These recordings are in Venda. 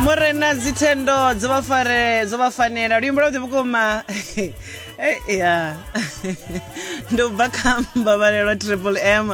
murena dzithendo dzo vha fare dzo vha fanela luimbo lwavhuḓi vhukuma Eh, ya ndo bva kha mbabalelwa triple m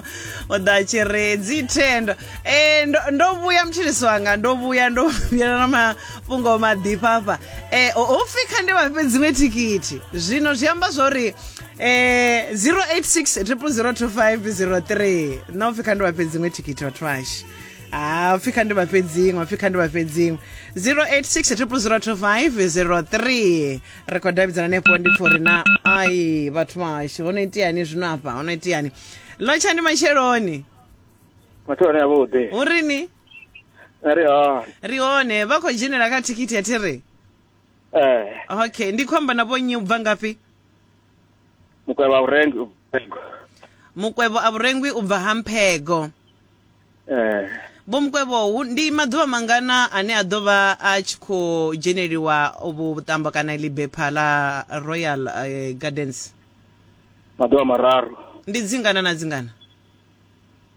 o ḓa tshi ri dzithendo Eh, ndo- ndo vhuya mutshilisi wanga ndo vhuya ndo vhuya na mafhungo maḓifha afha Eh, ho- ho pfi kha ndi vha fhe dziṅwe thikhithi zwino zwi amba zwa uri eh, 086 002 503 na u pfi kha ndi vha fhe dziṅwe thikhithi vhathu ashu ha pfi kha ndi vha fhedzinwe pfi kha ndi vha fhedzinwe 0860002503 ri khou davhidzana hanefho ndi pfo ri na ai vhathu vhashu ho no itiani zwino afha ho no itiani lotshani matsheloni Mathu ane avha uḓe. hu rini Ari ha. ri hone vha khou dzhenela kha thikhithi ya thiri Eh, okay ndi khou amba na vho nnyi u bva ngafhi mukwevha urengi. mukwevho a vhurengwi u bva ha mphego eh Vho Mukwevho hu- ndi maḓuvha mangana ane a ḓo vha a tshi khou dzheneliwa vhu vhuṱambo kana ḽi bepha ḽa Royal eh, Gardens maḓuvha mararu ndi dzingana na dzingana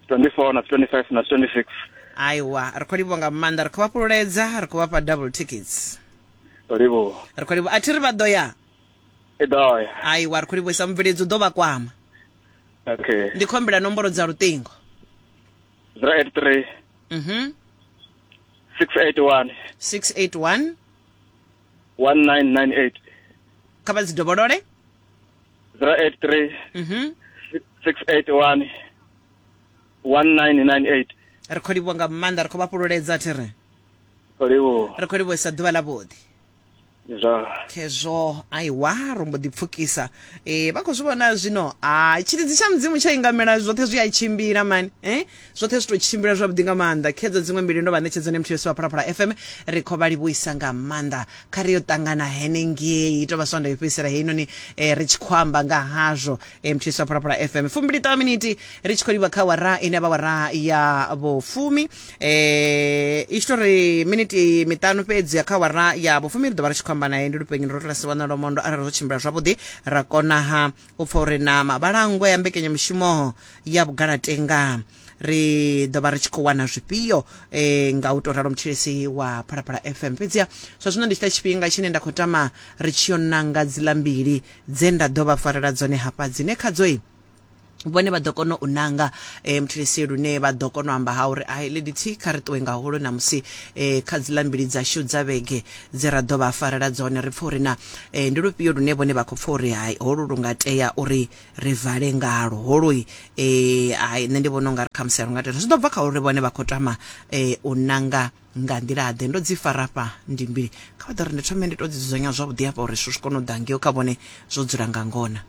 24 na 25 na 26 aiwa ri khou livhuwa nga maanḓa ri khou vha fhululedza ri khou vha fha double tickets ndo livhuwa ri khou livhuwa a thi ri vha ḓo ya hai wa ri khou livhuisa mubveledzi u ḓo vha kwama okay ndi khombela nomboro dza luṱingo 083 mhm 681 681 1998 kha vha dzi dovholole 083 mhm 681 1998 ri khou livhuwa nga maanḓa ri khou vha fhululedza thi ri khou livhuwa ri khou livhuwa sa ḓuvha ḽa vhuḓi zwa khezwo aiwa ro mbo ḓi pfukisa eh vha khou zwi vhona zwino ha tshilidzi tsha mudzimu tsha ingamela zwoṱhe zwi a tshimbila mani eh zwoṱhe zwi tou tshimbila zwavhuḓi nga maanḓa khedzo dziṅwe mbili ndo vha ṋetshedzo ne muthu yosiwa phalaphala fm ri khou vha livhuisa nga maanḓa kha ri yo ṱangana henengei tou vha swanda yo fhedzisela heinoni eh, ri tshi khou amba nga hazwo mthisa phalaphala fm fumbili ṱaha miniti ri tshi khou livha kha wara ine vha wara ya vhufumi eh i tshi tou ri miniti miṱanu fhedzi ya kha wara ya vhufumi ri ḓo vha ri tshi khou amba naye ndi lupenyo ro tola siwana lomondo arali zwo tshimbila zwavhuḓi ra konaha u pfa uri na mabalangwe ya mbekenyamushumo ya vhugalatenga ri ḓo vha ri tshi khou wana zwifhio e, nga u tou ralo mutshilisi wa phalaphala fm fhedziha zwa zwino ndi tshita tshifhinga tshine nda khou tama ri tshi yo nanga dziḽa mbili dze nda ḓo vha farela dzone hafha dzine khadzoi vhone vha ḓo kona u nanga um muthilisi lune vha ḓo kona u amba ha uri ai lady t kha ri ṱuwe ngaholo namusi um kha dziḽa mbili dzashu dza vhege dze ra ḓo vha farela dzone ri pfha uri na um ndi lufhio lune vhone vha khou pfha uri hai holu lu nga tea uri ri vale ngalwo holoi eh hai nṋe ndi vhona ungari khamusi a ri nga tenda zwi ḓo bva kha uri vhone vha khou tama eh u nanga nga nḓila ḓe ndo dzi fara fha ndi mbili kha vha ḓo ri ndi thome ndi to dzi dzudzanya zwavhuḓi hafha uri zwithu zwi kone u ḓa ngeo kha vhone zwo dzula nga ngona